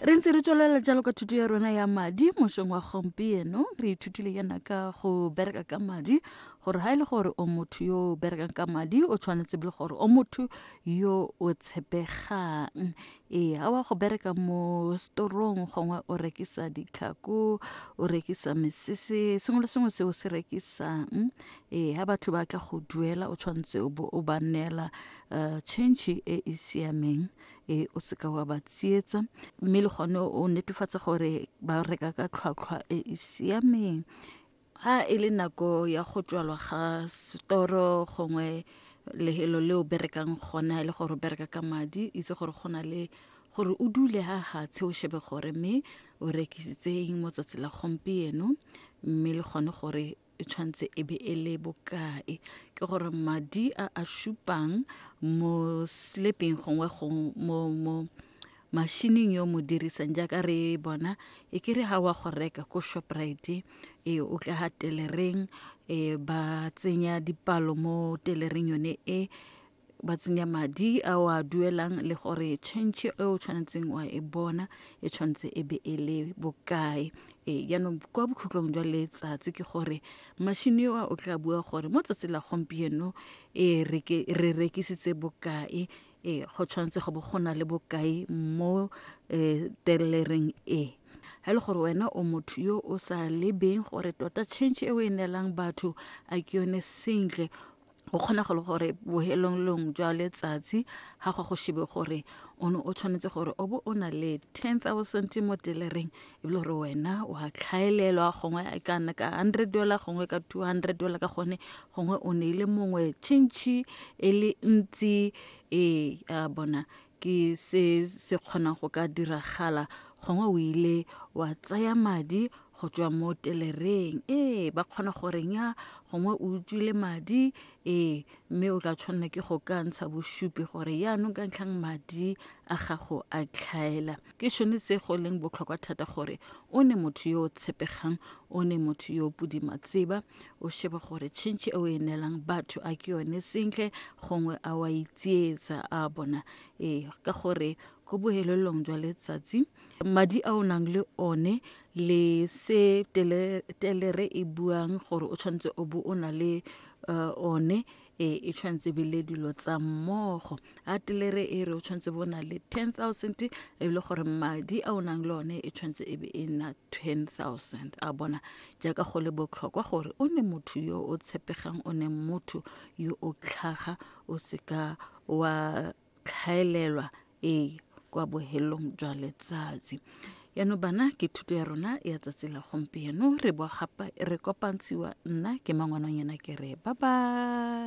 re ntse re tswelela jalo ka thuto ya rona ya madi mosong wa gompieno re ithutile yana ka go bereka ka madi gore ga e le gore o motho yo o berekang ka madi o tshwanetse le gore o motho yo o tshepegang ee a wa go bereka mo storong gongwe o rekisa ditlhako o rekisa mesese sengwe le sengwe se o se rekisang ee ga batho ba tla go duela o tshwanetse o bo o ba neela um change e e siameng e o seka wa ba tsietsa mme le gone o netefatsa gore ba reka ka tlhwatlhwa e e siameng ha e le nako ya go tswalwa ga setoro gongwe lehelo le o berekang gona e le gore o bereka ka madi itse gore go na le gore o dule ha hatshe o shebe gore mme o rekisitse eng mo tsatsi la gompieno mme le gone gore e tshwanetse e be e le bokae ke gore madi a a supang mo slepeng gongwe mo mo mashining yo mo dirisang jaaka re bona e kere ga wa go reka ko shoprite e o tla ga telereng e ba tsenya dipalo mo telereng yone e ba tsenya madi a o a duelang le gore change e o tshwanetseng wa e bona e tshwanetse e be e le bokae ee jaanong kwa bokhutlong jwa letsatsi ke gore mashini eo o tla bua gore mo tsatsi la gompieno e re rekisitse bokae ee go tshwanetse go bo go na le bokae mo um telereng e ga e le gore wena o motho yo o sa lebeng gore tota change e o e neelang batho a ke yone sentle go kgona go le gore bohelonglong jwa letsatsi ga go go shebe gore o ne o tshwanetse gore o bo o na le ten thousand mo telereng e bile gore wena wa tlhaelelwa gongwe e ka nna ka hundred dollar gongwe ka two hundred dollar ka gone gongwe o ne ile mongwe chintšhi e le ntsi ee a bona ke se se kgonang go ka diragala gongwe o ile wa tsaya madi go tswa mo telereng ee ba kgona gore nya gongwe o utswile madi ee mme o tla tshwanela ke go ka ntsha bosupi gore yaanong ka ntlhang madi a gago a tlhaela ke sone se go leng botlhokwa thata gore o ne motho yo o tshepegang o ne motho yo o pudima tseba o shebe gore tšhentšhe e o e neelang batho a ke yone sentle gongwe a wa itsietsa a bona ee ka gore ko bohelelong jwa letsatsi madi a o nang le one le se telere e buang gore o tshwanetse o bo o na le uh, one e e tshwanetse be le dilo tsa mmogo a telere e re o tshwanetse bo na le 10000 e le gore madi a o nang le one e tshwanetse e be e nna 10000 a bona jaaka go le botlhokwa gore o ne motho yo o tshepegang o ne motho yo o tlhaga o seka wa tlhaelelwa ee kwa bohelong jwa letsatsi yaanong bana ke thuto ya rona ya tsatsi la gompieno re boa gape re kopantshiwa nna ke mangwananyana ke re ba ba